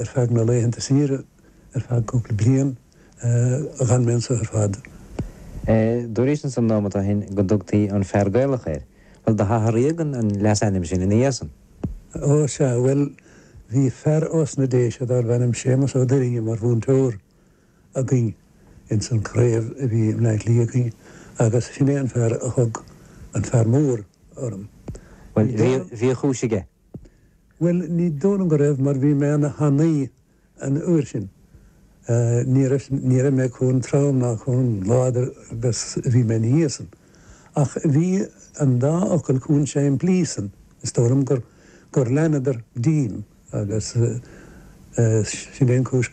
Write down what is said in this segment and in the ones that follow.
Ar feadh na laethanta saoire, ar feadh cúpla bliain, d'fhan mé anseo ar fad. Dúraís ansan nóimeat ó shin go dtugtaí an Fear Gaelach ort. Bhuel, do hathraíodh an leasainm sin ina dhiaidh san. Ó, sea, bhuel, bhí fear ós na Déise darbh ainm Séamas Ó Duirinne mar mhúinteoir againn ins an craobh a bhí i mBleá Cliath againn agus sin é an fear a thug An Fear Mór orm. Bhuel, bhí a chúis aige. Bhuel, ní dóigh liom go raibh mar bhí mé ana thanaí an uair sin. Ní raibh, ní raibh mé chomh trom ná chomh láidir agus a bhí mé ina dhiaidh san. Ach bhí an dá fhocal chomh simplí san, is dóigh liom gur, gur leanadar díom agus sin é an chúis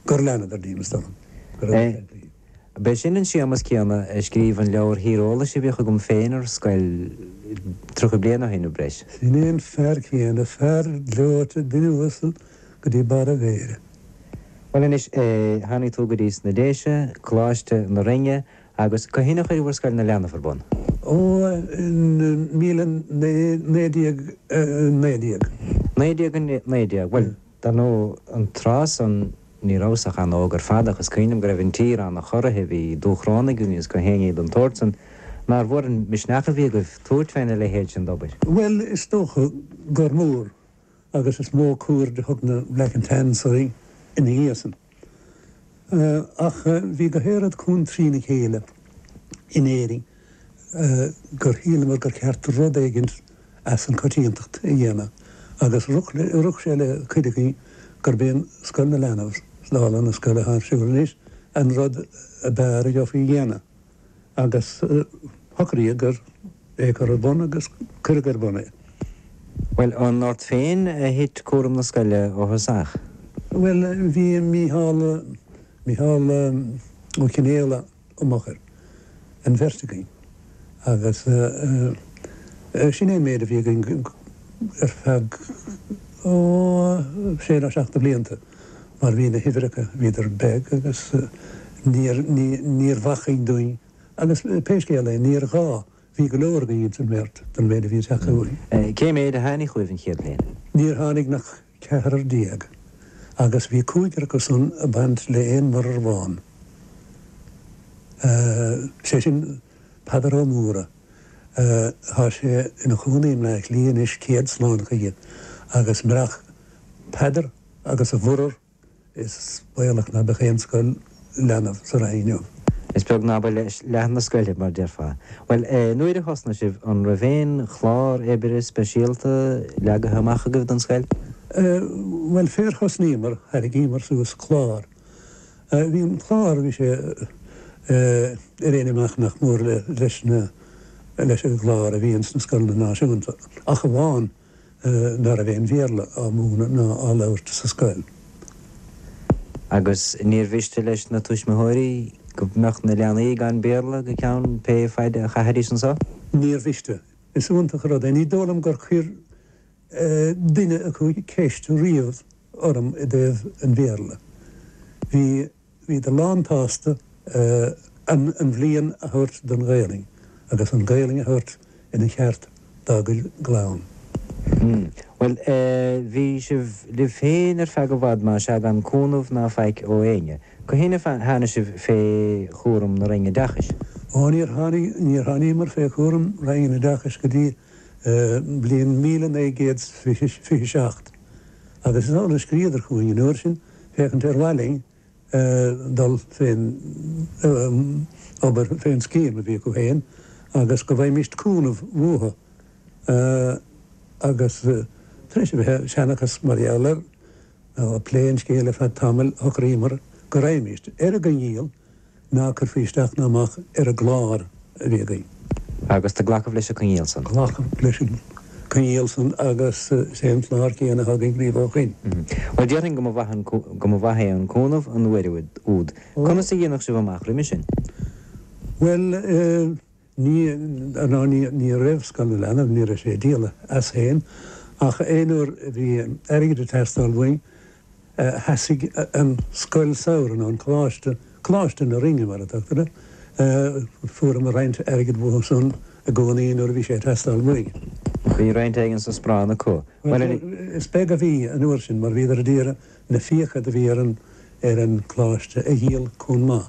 gur leanadar díom, is dóigh liom, go raibh siad. B'é sin an Séamas céanna a scríobh an leabhar tíreolais a bhíodh agam féin ar scoil tríocha bliain ó shin nó breis. Sin é an fear céanna, fear gleoite, duine uasal go dtí barr a mhéire. Bhuel anois, tháinig tú go dtí sna Déise, Coláiste na Rinne, agus cathain a chuireabhair Scoil na Leanbh ar bun? Ó, in naoi déag naoi déag. Naoi déag naoi déag. Bhuel, dar ndóigh, an tráth san. Ní rabhas ach an-óg ar fad ach is cuimhin liom go raibh an tír an-chorraithe, bhí Dúchrónaigh againn agus gach éinní den tsórt san. Nár mhór an misneach a bhí agaibh tabhairt fé na leithéid sin d'obair? Bhuel, is dócha gur mór agus is mó cuaird a thug na Black and Tans orainn ina dhiaidh san. Ach bhí gach aon rud chomh trína chéile in Éirinn. gur shíleamar gur cheart rud éigin as an coitiantacht a dhéanamh agus rith sé le cuid againn gurb é an Scoil na Leanbh, dála na scoile thá ar siúl anois, an rud a b'fhearr a gheofaí a dhéanamh agus shocraíodh ar é a chur ar bun agus cuireadh ar bun é. Bhuel, an ort féin a thit cúram na scoile ó thosach? Bhuel, bhí Mícheál, Mícheál Ó Cionnfhaolaidh. im fhochair, an bheirt againn, agus sin é an méid a bhí againn ar feadh, ó, sé nó seacht de bhlianta, mar bhí na huimhreacha, bhíodar beag agus níor, níorbh acmhainn dúinn, agus pé scéal é, níor ghá, bhí go leor againn ins an mbeirt don mhéid a bhí ag teacht chugainn. Cé méid a tháinig chugaibh an chéad bhliain? Níor tháinig ach 14 agus bhí cúigear acu san a baint le aon mhuirear amháin. Sé sin Peadar Ó Mórdha. Thá sé ina chónaí i mBleá Cliath anois céad slán chuige agus murach Peadar agus a mhuirear Is baolach ná beadh aon scoil leanbh sa Rinn inniu. Is beag ná ba leath na scoile, mar déarfá. Bhuel, nuair a thosnaigh sibh, an raibh aon chlár oibre speisialta leagaithe amach agaibh don scoil? Bhuel, fér thosnaíomar, thairgíomar suas clár. Bhí an clár, bhí sé ar aon imeacht nach mór leis na, leis an gclár a bhí ins na scoileanna náisiúnta, ach amháin, ná raibh aon Bhéarla á múineadh ná á labhairt sa scoil. Agus níor mhiste leis na tuismitheoirí go mbeadh na leanaí gan Béarla go ceann pé faid a chaithfidís anso. Níor mhiste. Is iontach an rud é. Ní dóigh liom gur chuir duine acu ceist riamh orm i dtaobh an Bhéarla. Bhí. Bhíodar lántsásta an bhliain a thabhairt don Ghaelainn agus an Ghaelainn a thabhairt ina cheart dá gcuid gclann. Bhuel, bhí sibh libh féin ar feadh i bhfad, má sea, gan cúnamh ná faic ó éinne. Cathain ansan a tháinig sibh fé chúram na Roinne Oideachais? Ó, níor tháinig, níor tháiníomar fé chúram Roinn an Oideachais go dtí bliain míle naoi gcéad fiche seacht agus is amhlaidh a scríodar chugainn an uair sin, féachaint ar mhaith linn dul fén obair, fén scéim a bhí acu féin agus go bhfaighimis cúnamh uathu agus tar éis a bheith ag seanchas mar gheall air nó ag plé an scéil ar feadh tamaill shocraíomar go raghaimist ar an gcoinníoll ná cuirfí isteach ná amach ar an gclár a bhí againn. Agus do glacadh leis an gcoinníoll san. Glacadh leis an gcoinníoll san agus is é an clár céanna atá againn riamh ó shoin. Bhuel, déarfainn go mba mhaith an, go mba mhaith é an cúnamh an uair úd. Conas a dhéanadh sibh amach roimis sin? Bhuel eh, Ní, ná ní, ní raibh Scoil na Leanbh, ní raibh sé ag díol as féin, ach aon uair a bhí airgead ag teastáil uainn, sheasaigh an scoil samhraidh, nó an coláiste, Coláiste na Rinne mar a tugtar air, fuaireamar roinnt airgead uathu san i gcónaí nuair a bhí sé ag teastáil uainn. Bhí roinnt éigin sa sparán acu. Bhuel, is beag a bhí an uair sin mar bhíodar a d'iarraidh na fiacha do bhí ar an, ar an gcoláiste a dhíol comh maith.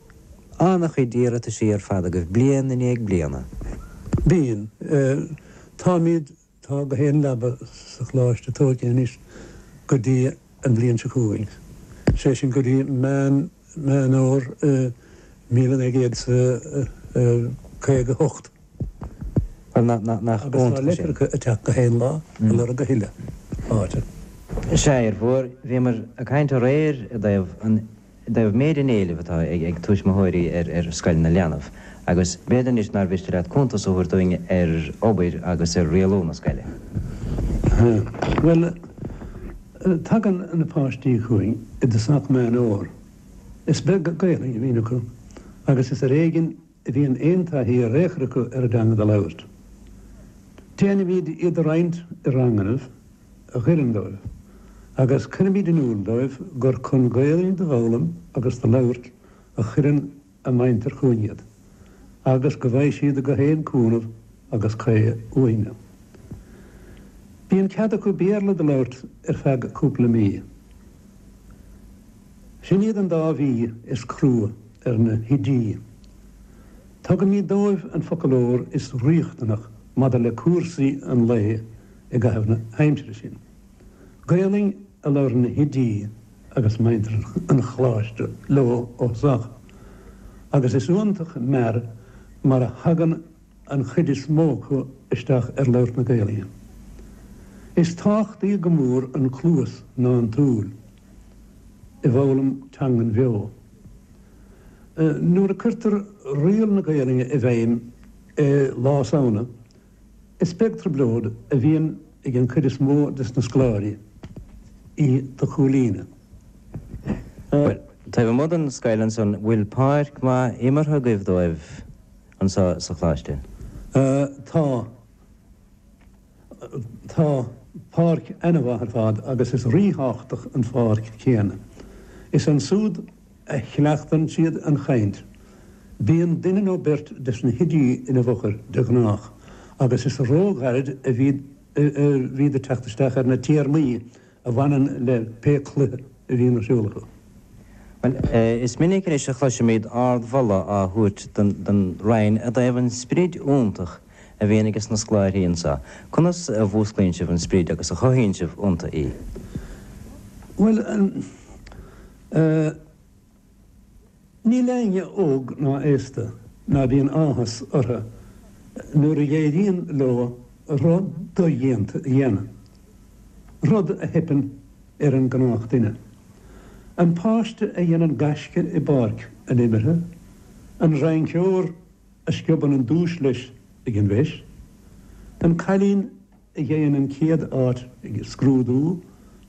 An-chuid iarrataisí ar fad agaibh bliain i ndiaidh bliana. Bíonn. Eh, táimid, tá gach aon leaba sa Choláiste tóigthe anois go dtí an bhliain seo chugainn. Sé sin go dtí Meán, Meán Fhómhair míle naoi gcéad is a caoga hocht. Bhuel nach, nach, nach iontach sin. Agus tá leitreacha ag teacht gach aon lá, ag lorg a thuilleadh áite. Sea, a Fhir Mhóir, bhíomar ag caint aréir i dtaobh an I dtaobh méid an éilimh atá ag tuaismitheoirí ar scoil na leanbh, agus b'fhéidir anois nár mhiste leat cuntas a thabhairt dúinn ar obair agus ar rialú na scoile. Bhuel, tagann na páistí chugainn i dtosach Meán Fómhair. Is beag Gaelainn a bhíonn acu agus is ar éigin bhíonn aon taithí ar aon chor acu ar an dteanga do labhairt. Déanaimíd iad a roinnt i rangannaibh a dh'oireann dóibh agus cuirimíd in iúl dóibh gur chun Gaelainn do dh'fhoghlaim agus do labhairt a chuireann a muintir chúinn iad agus go bhfaighidh siad gach aon cúnamh agus caoi uainne. Bíonn cead acu Béarla do labhairt ar feadh cúpla mí. Sin iad an dá mhí is crua ar na hoidí. Tugaimid dóibh an foclóir is riachtanach maidir le cúrsaí an lae i gcaitheamh na haimsire sin. Gaelainn a labhrann na hoidí agus muintir an Choláiste leo ó thosach agus is iontach mear mar a thagann an chuid is mó acu isteach ar labhairt na Gaelainne. Is tábhachtaí go mór an chluas ná an tsúil i bhfoghlaim teangan bheo. Nuair a cuirtear riail na Gaelainne i bhfeidhm i Lá Samhna, is beag trioblóid a bhíonn ag an chuid is mó des na scoláirí í do chomhlíonadh. Taobh amuigh den scoil ansan, bhfuil páirc maith imeartha agaibh dóibh? Anseo sa Choláiste. Tá Tá páirc ana-mhaith ar fad agus is ríthábhachtach an pháirc céanna. Is ansúd a chleachtann siad an chaint. Bíonn duine nó beirt de sna hoidí ina bhfochair de ghnách agus is róghairid a bhíd ag teacht isteach ar na téarmaí a bhaineann le pé cluiche a bhíonn ar siúl acu. Bhuel, is minic anois a chloisimid ardmholadh á thabhairt don Rinn i dtaobh an sprid iontach a bhíonn aige sna scoláirí anseo. Conas a mhúsclaíonn sibh an sprid agus a chothaíonn sibh iontu í? Bhuel, eh, eh. Níl éinne óg ná aosta ná bíonn áthas orthu nuair a éiríonn leo rud dodhéanta a dhéanamh, rud a theipeann ar an gnách duine. An páiste a dhéanann gaisce i bpáirc an imeartha, an rainceoir a sciobann an duais leis ag an bhfeis, an cailín a gheibheann an chéad áit ag scrúdú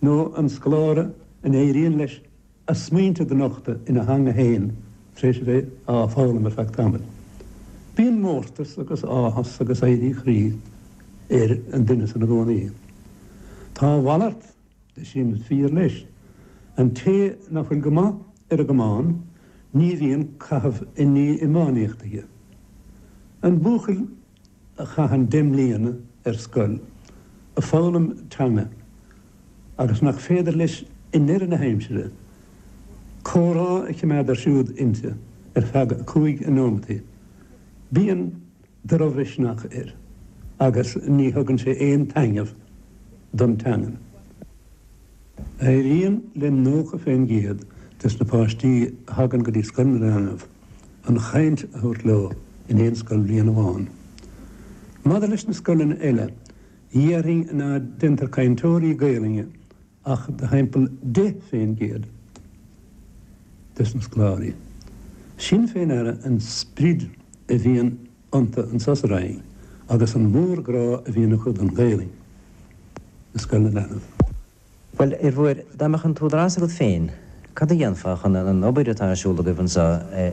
nó an scoláire a n-éiríonn leis a smaointe do nochtadh ina theanga fhéin tar éis a bheith á foghlaim ar feadh tamaill. Bíonn mórtas agus áthas agus éirí croí ar an duine sin i gcónaí. Tá a mhalairt de sin fíor leis. An té nach bhfuil go maith ar an gcamán ní bhíonn caitheamh i ndiaidh iománaíocht aige. An buachaill a chaitheann deich mbliana ar scoil ag foghlaim teanga agus nach féidir leis i ndeireadh na haimsire comhrá a choimeád ar siúl inti ar feadh cúig nóimeataí. Bíonn drochmhisneach air agus ní thugann sé aon taitneamh don teangain. Éiríonn le nócha fén gcéad des na páistí a thagann go dtí Scoil na Leanbh. an chaint a thabhairt leo in aon scoilbhliain amháin. Maidir leis na scoileanna eile, déarfainn ná deintear cainteoirí Gaelainne ach do thimpeall 10% des na scoláirí. Sin fé ndeara an sprid a bhíonn iontu an tsamhlaíocht agus an mórghrá a bhíonn acu don Ghaelainn i scoil na leanbh. Bhuel, a Mhuiris, dá mbeadh an t-údarás agat féin, cad a dhéanfá chun an obair atá ar siúl agaibh anseo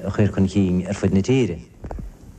a chur chun cinn ar fud na tíre?